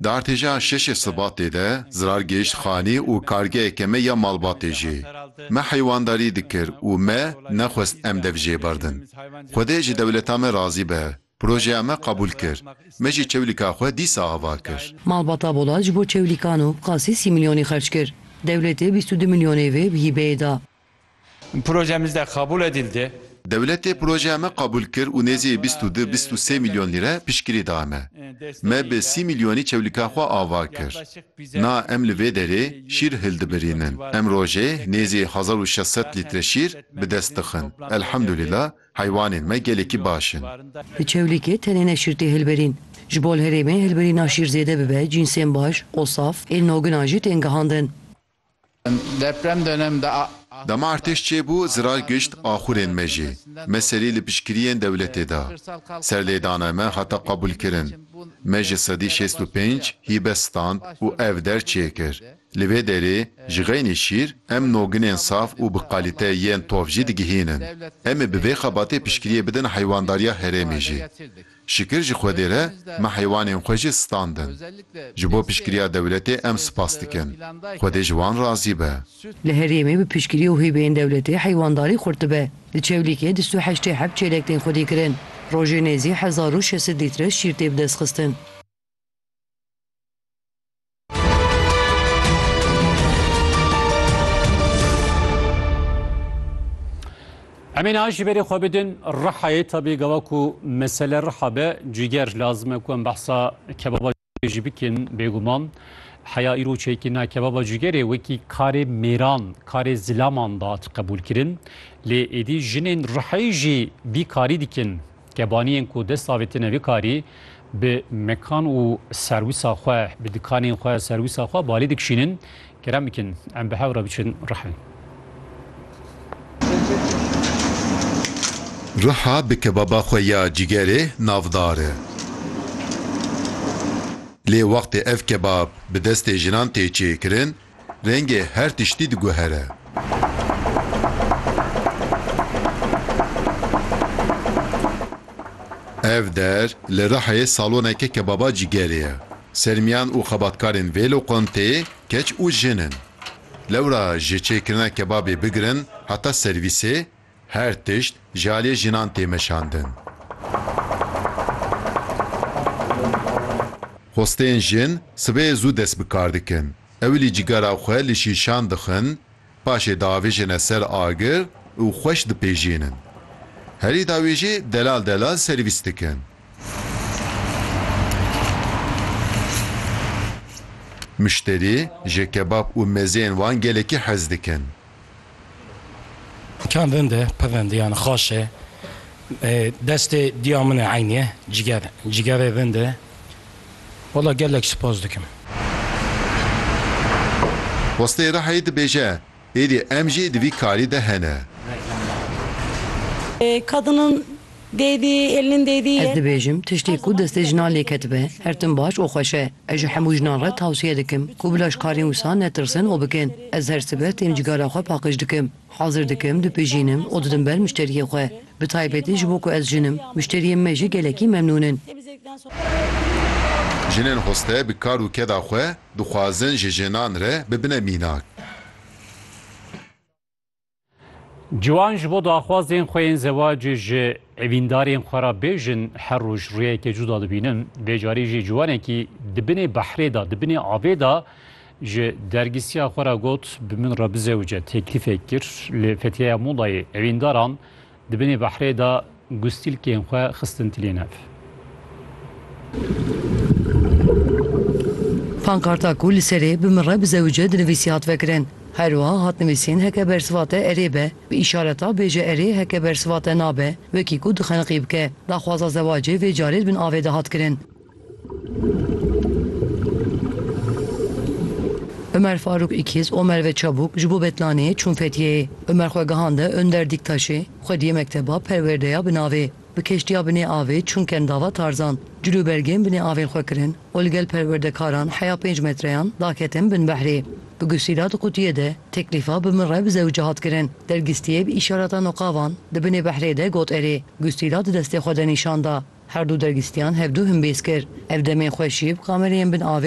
Di artêşa şeşê Sibatê de zirar gihişt xanê û kargeheke me ya malbatê jî. Me heywandarî dikir û me nexwest em dev jê berdin. Xwedê ji dewleta me razî be, projeya me qebûl kir, me jî çewlîka xwe dîsa ava kir. Malbata Bolat ji bo çewlîkan û qasî sî milyonê xerc kir. Dewletê bîst û du milyonê vê bi hîbeyê da. Projemizde kabul edildi. Dewletê projeya me qabul kir û nêzî bîst û du bîst û sê milyon lîre piştgirî da me. Me bi sî milyonî çewlika xwe ava kir. Na em li vê derê şîr hildibirînin. Em rojê nêzî hezar û şeş sed lître şîr bi dest dixin. Elhamdulîla heywanên me gelekî baş in. Di çewlîkê tenê ne şîr tê hilbirîn. Ji bo li herêmê hilbirîna şîr zêde bibe cînsên baş, osaf, ên nogina jî tên gihandin. Dema artêş çêbû zirar gişt axurên me jî. Me serî li piştgiriyên dewletê da. Serlêdana me hata qebûlkirin. Me ji sedî şêst û pênc hîbe stand û ev der çêkir. Li vê derê ji xeynî şîr em noginên saf û bi qalîte yên tovjî digihînin. Em ê bi vê xebatê piştgiriyê bidin heywandarîya herêmê jî. Şikir ji Xwedê re me heywanên xwe jî standin. Ji bo piştgiriya dewletê em spas dikin. Xwedê ji wan razî be. Li herêmê bi piştgirî û hîbeyên dewletê heywandarî xurt dibe. Li Çewlîgê dist û heştê heb çêlek tên xwedîkirin. Rojê nêzî hezar û şesit lître şîr tê bidestxistin. Emîn a ji berê xwe bidin rihayê tabî gava ku mesele riha be cîger lazim e ku em behsa kebaba jî bikin bêguman heya îro çêkina kebaba cîgerê wekî karê mêran karê zilaman da qebûl kirin lê êdî jinên riheyî jî vî karî dikin Kebaniyên ku dest avêtine vê karî bi mekan û serwisa xwe, bi dikanên xwe, serwisa xwe balê dikişînin, kerem bikin em bi hev re biçin Rihê. Riha bi kebaba xwe ya cîgerê navdar e. Lê wextê ev kebab bi destê jinan tê çêkirin, Rengê her tiştî diguhere. Ev der li Rihayê saloneke kebaba cîgerê ye. Sermiyan û xebatkarên vê loqanteyê keç û jin in. Lewra ji çêkirina kebabê bigirin heta servîsê Her tişt ji aliyê jinan tê meşandin. Xwestên jin sibehê zû dest bi kar dikin. Ewilî cigara xwe li şîşan dixin, paşê diavêjine ser agir û xweş dipêjînin. Herî dawî jî delal delal servîs dikin. Muşterî ji kebab û mezeyên wan gelekî hez dikin. Kan vin de pevendiyan xaş e. Destê diya min e eynî ye ciger. Cigerê vin de wala gelek sipas dikim. Westê Rihayê dibêje, Êdî em jî di vî karî de hene. Kadinên Dêdî, Elin Dêdî ye. Ez dibêjim tiştê ku destê jinan lê ketibe her tim baş û xweş e. Ez ji hemû jinan re tewsiye dikim ku bila ji karên wisa netirsin û bikin. Ez her sibe tên cigara xwe paqij dikim, hazir dikim, dipejînim û didim ber muşteriyê xwe. Bi taybetî ji bo ku ez jin im, muşteriyên me jî gelekî memnûn in. Jinên xweste bi kar û keda xwe dixwazin ji jinan re bibine mînak. Ciwan ji bo daxwazên xwe yên zewacê ji evîndarên xwe re bêjin her roj rûyeke cuda dibînin. Vê carî jî ciwanekî di binê behrê de, di binê avê de ji dergîsiya xwe re got bi min re bizewce teklîfek kir. Li Fethiyeya Modayê evîndaran Di binê behrê de gustîlkên xwe xistin tilê nev. Pankarta ku li serê bi min re bizewije dinivîsî hat vekirin. Her wiha hat nivîsîn heke bersiva te erê be, bi îşareta bêje erê heke bersiva te nabe, wekî ku dixeniqî bike. Daxwaza zewacê vê carê di bin avê de hat kirin. Umer Faruk îkiz û Merve Çabuk ji bo Betlaneyê çûn Fetiyeyê. Umer xwe gihande Önder Dîktaşê, xwe diyê mekteba perwerdeya bi navê Bi keştiya binê avê çûn Kendava Tarzan. Cilûbergên binê avên xwe kirin û li gel perwerdekaran heya pênc metreyan daketin bin behrê. Bi gusîla di qutiyê de teklîfa bi min re bi zewicê hat kirin. Dergistiyê bi îşaratan û qavan di binê behrê de got erê. Gusîla di destê xwe de nîşan da. Her du dergîstiyan hevdu himbêz kir. Ev demên xweş jî bi kamereyên bin avê